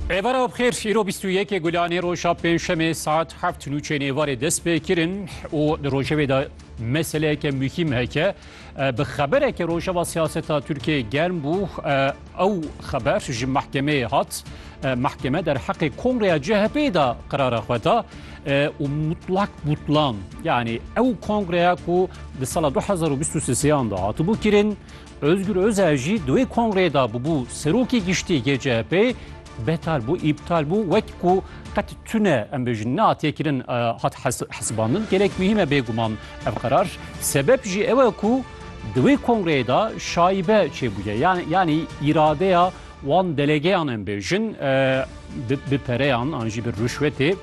Êvara bixêr îro bîst û yekê gulanê roja pêncşemê saet heft nûçên êvarê dest pê kirin û di rojevê de meseleyeke muhîm heke bi xebereke rojeva siyaseta Tirkiyeyê germ bû ew xeber ji mehkemeyê hat mehkeme derheqê kongreya CHP'ê de qirara xwe da û mutlak butlan yanî ew kongreya ku di sala 2023 de hatibû kirin Ozgur Ozel jî di wê kongreyê de bûbû serokê giştî yê CHP'ê betal bû, îptal bû wek ku qet tune em bêjin nehatiye kirin hat hesibandin. Gelek muhîm e bêguman ev qerar. Sebep jî ew e ku di wê kongreyê de şaibe çêbûye. Yanî îradeya wan delegeyan em bêjin bi pereyan an jî bi rûşwetê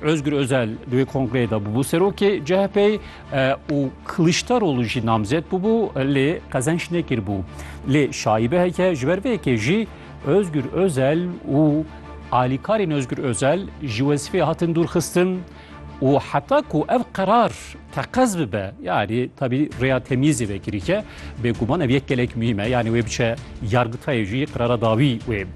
Özgür Özel di wê kongreyê de bûbû serokê CHP'ê û Kiliçdaroglu jî namzet bûbû lê qezenç nekiribû. Lê şaîbe heke ji ber vê yekê jî Özgür Özel û alîkarên Özgür Özel ji wezîfeyê hatin dûrxistin û heta ku ev qerar teqez bibe yanî tevî rêya temyîzê vekirî ke bêguman ev yek gelek muhîm e yanî wê biçe yargitayê jî qerara dawî wê.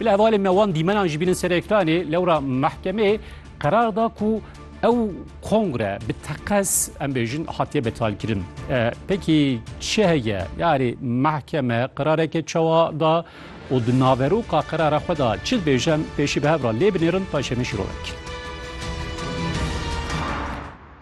Bi hevalên me wan dîmenan jî bînin ser ekranê, lewra mehkemeyê qerar da ku ew kongre bi teqez em bêjin hatiye betalkirin. Pekî çi heye? Yarê mehkeme qerareke çawa da û di naveroka qerara xwe da çi dibêje em pêşî bi hev re lê binêrin paşê min şîrove kir.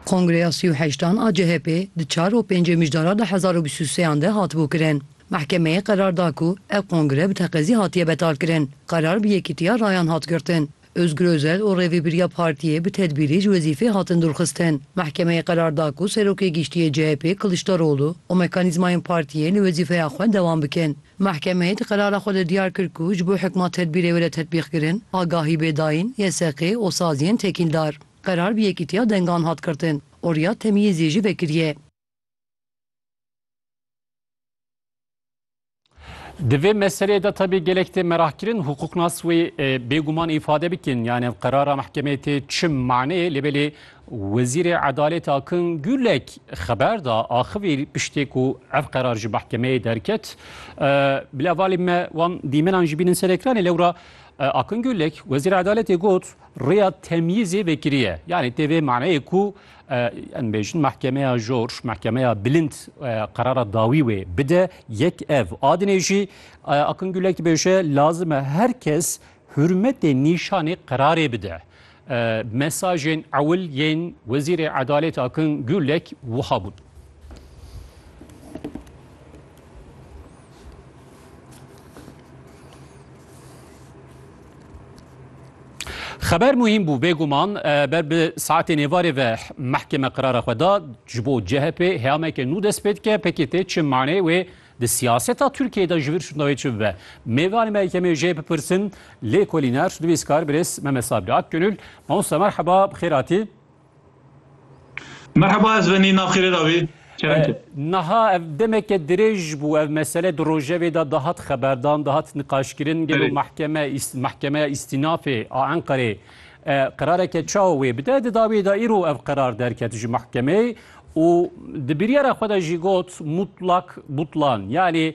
Kongreya sî û heştan a CHP'ê di çar û pêncê mijdaran a hezar û bîst û sêyan de hatibû kirin. Mehkemeyê qerar da ku ev kongre bi teqezî hatiye betalkirin. Qerar bi yekîtiya rayan hat girtin. Ozgur Ozel û rêvebiriya partiyê bi tedbîrî ji wezîfê hatin dûrxistin. Mehkemeyê qerar da ku Serokê Giştî yê CHP'ê Kiliçdaroglu û mekanîzmayên partiyê li wezîfeya xwe dewam bikin. Mehkemeyê di qerara xwe de diyar kir ku ji bo hikma tedbîrê were tetbîqkirin, agahî bê dayîn, YSQ'ê û saziyên tekîldar. Qerar bi yekîtiya dengan hat girtin û Riyad Temiyîzî jî vekiriye. Di vê meseleyê de tabi gelek tê merahkirin hukuknas wê bêguman îfade bikin yani qerara mehkemeyê tê çi maneyê lê belê Wezîrê Edalêt Akin Gulek xeber da axivî piştê ku ev qerar ji mehkemeyê derket bi levalê me wan dîmenan jî bînin ser ekranê lewra Akin Gulek Wezîrê Edaletê got rêya temyîzê vekiriye yani tê vê maneyê ku Em bêjin mehkemeya jor, mehkemeya bilind qerara dawî wê bide. Yek ev adinê jî Akın Gülek bêje lazim e her kes hürmetê nîşanê qerarê bide. Mesajên ewil yên Wezîrê Edalêt Akın Gülek wiha bûn. Xeber muhîm bû bêguman ber bi saetên êvarê ve mehkeme qirara xwe da ji bo CHP heyameke nû dest pê dike PKT çi manê wê di siyaseta Tirkiyeyê de ji vir şûnda wê çi bibe. Mêvanê me yekemê jê bipirsin lêkolîner nivîskar birêz Mehmet Sabri Akgönül. Mamosta merheba bi xêr hatî. Merheba ez venî nav xêrê ra bî çerek e. Niha ev demeke dirêj bû ev mesele di rojevê de dihat xeberdan, dihat niqaşkirin gelo mehkeme mehkemeya îstînafê a Enqerê qerareke çawa wê bide. Di dawiyê de îro ev qerar derket ji mehkemeyê û di biryara xwe de jî got mutlak butlan yanî